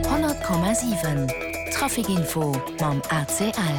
100,7 Traficinfo mam ACL.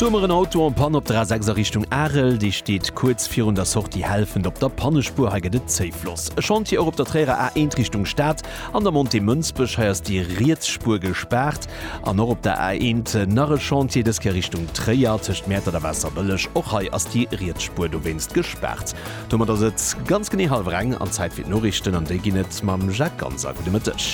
Do hu mer en Auto en Panne op der A6 a Richtung Arel. Dee steet kuerz virun der Sortie Helfent op der Pannespuer. Hei gëtt et zéif los. E Chantier och op der Tréierer A1 Richtung Stad an der Montée Mënsbech. Hei ass déi riets Spuer gespaart. An och op der A1 nach e Chantier, dës Kéier Richtung Tréier tëscht Mäertert a Waasserbëlleg. Och hei ass déi riets Spuer dowéinst gespaart. Domat ass et ganz genee hallwer eng an Zäit fir d'Noriichten an déi ginn et mam Jacques Ganser. Gudde Mëtteg.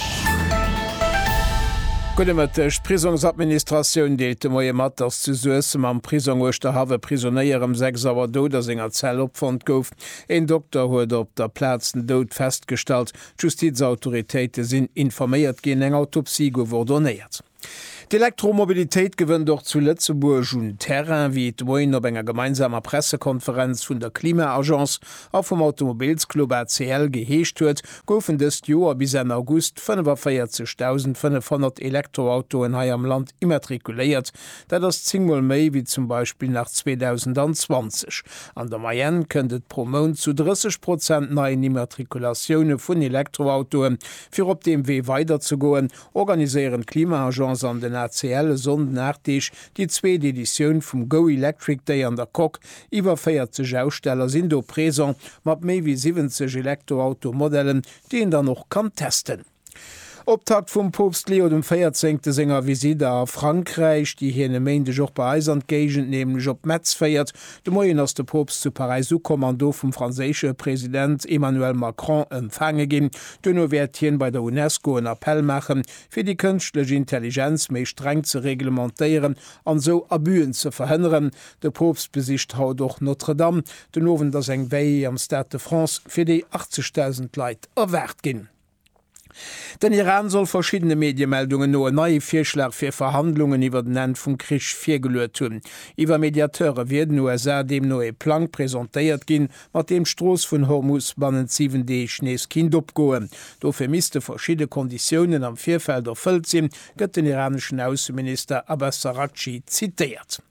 Gudde Mëtteg. D'Prisongsadministratioun deelt de Moie mat, datt zu Suessem am Prisong Uerschterhaff e Prisonéier ëm 6 Auer dout a senger Zell opfonnt gouf. Een Dokter huet op der Plaz den Doud festgestallt. D'Justizautoritéite sinn informéiert ginn, eng Autopsie gouf ordonéiert. D'Elektromobilitéit gewënnt och zu Lëtzebuerg un Terrain, wéi et de Moien op enger gemeinsamer Pressekonferenz vun der Klima-Agence a vum Automobilsclub ACL geheescht huet, goufen dëst Joer bis Enn August 45.500 Elektroautoen hei am Land immatrikuléiert. Dat ass zéng Mol méi wéi zum Beispill nach 2020. An der Moyenne kënnt et pro Mount zu 30 Prozent neien Immatrikulatioune vun Elektroautoe fir op deem Wee weiderzegoen, organiséieren d'Klima-Agence an den ACL e Sonnden 8 Deeg déi zweet Editioun vum Go Electric Day an der Coque. Iwwer 40 Aussteller sinn do présent, mat méi wéi 70 Elektroauto-Modellen, déi een dann och kann testen. Optakt vum Poopst Leo dem Véierzéngte senger Visite a Frankräich, déi hien e Méindeg och bei eis an d'Géigend, nämlech op Metz féiert, De Moien ass de Poopst zu Paräis ukomm an do vum franséische President Emmanuel Macron empfaange ginn. Duerno wäert hien bei der Unesco en Appell maachen, fir déi kënschtlech Intelligenz méi streng ze reglementéieren an esou Abüen ze verhënneren. De Poopst besicht haut och Notre Dame. Den Owend ass eng Veillée am Stade de France, fir déi 80.000 Leit erwaart ginn. Den Iran soll verschiddene Mediemeldungen no e neie Virschlag fir Verhandlungen iwwer den Enn vum Krich virgeluet hunn. Iwwer Mediateure wier den USA deemno ee Plang presentéiert ginn, mat deem d'Strooss vun Hormus bannent 7 Deeg nees kinnt opgoen. Dofir misste verschidde Konditiounen am Virfeld erfëllt sinn, gëtt den iraneschen Ausseminister Abbas Araghchi zitéiert.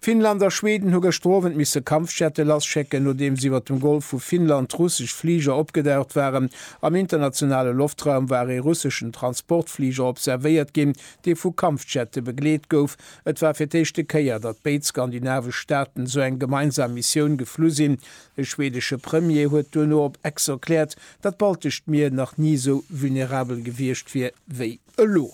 Finnland a Schweden hu gëschter Owend misse Kampfjette lasschécken, nodeems iwwer dem Golf vu Finnland russesch Fliger opgedaucht waren. Am internationale Loftraum war ee russeschen Transportfliger observéiert ginn, dee vu Kampfjette begleet gouf. Et war fir d'éischte Kéier, datt béid skandinavesch Staaten esou eng gemeinsam Missioun geflu sinn. De schwedesche Premier huet duerno op Ex erkläert, datt d'Baltescht Mier nach ni esou vulnerabel gewiescht wier wéi elo.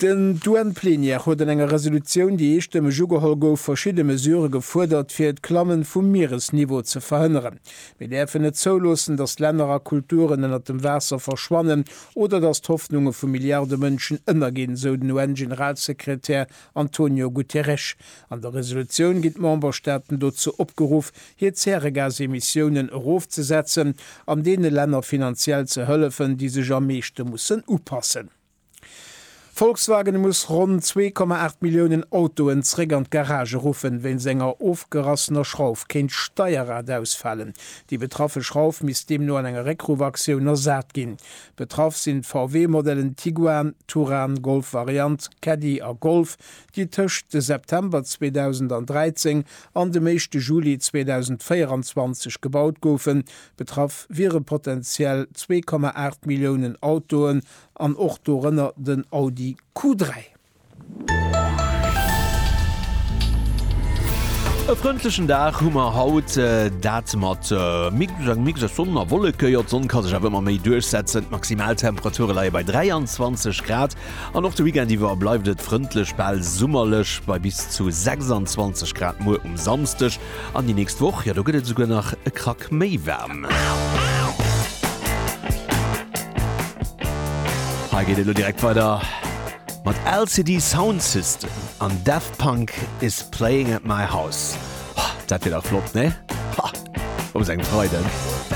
Den d'UN-Plenière huet an enger Resolutioun, déi eestëmmeg ugeholl gouf, verschidde Mesurë gefuerdert, fir d'Klammen vum Mieresniveau ze verhënneren. Mir däerfen net zouloossen, datt Länner a Kulturen ënnert dem Waasser verschwannen oder datt d'Hoffnunge vu Milliarde Mënschen ënnerginn, sou den UN-Generalsekretär Antonio Guterres, An der Resolutioun ginn d'Memberstaaten dozou opgeruff, hir Zäregasemissiounen erofzesetzen an deene Länner finanziell ze hëllefen, déi sech am meeschte mussen upassen. Volkswagen muss ronn 2,8 Milliounen Autoen zréck an d'Garage ruffen, wéinst enger ofgerassener Schrauf kéint d'Steierrad ausfalen. Déi betraffe Schrauf misst deemno an enger Réckruffaktioun ersat ginn. Betraff sinn d'VW-Modellen Tiguan, Touran, Golf Variant, Caddy a Golf, déi tëscht de September 2013 an dem éischte Juli 2024 gebaut goufen. Betraff wiere potenziell 2,8 Milliounen Autoen an och dorënner den Audi Q3. E frëndlechen Dag hu mer haut, dat mat mixe Sonn a Wolleke. Jo, d'Sonn ka sech awer ëmmer méi duerchsetzen. D'Maximaltemperature leie bei 23 Grad an och de Weekend iwwer bleift et frëndlech, bal summerlech bei bis zu 26 Grad. Muer um Samsdeg An déi nächst Woch, jo, do gëtt et esouguer nach e Krack méi waarm. Hei geet et elo direkt weider mat LCD Sound System an Daft Punk is playing at my house. Dat wier dach flott, ne? Op esou engem Freiden.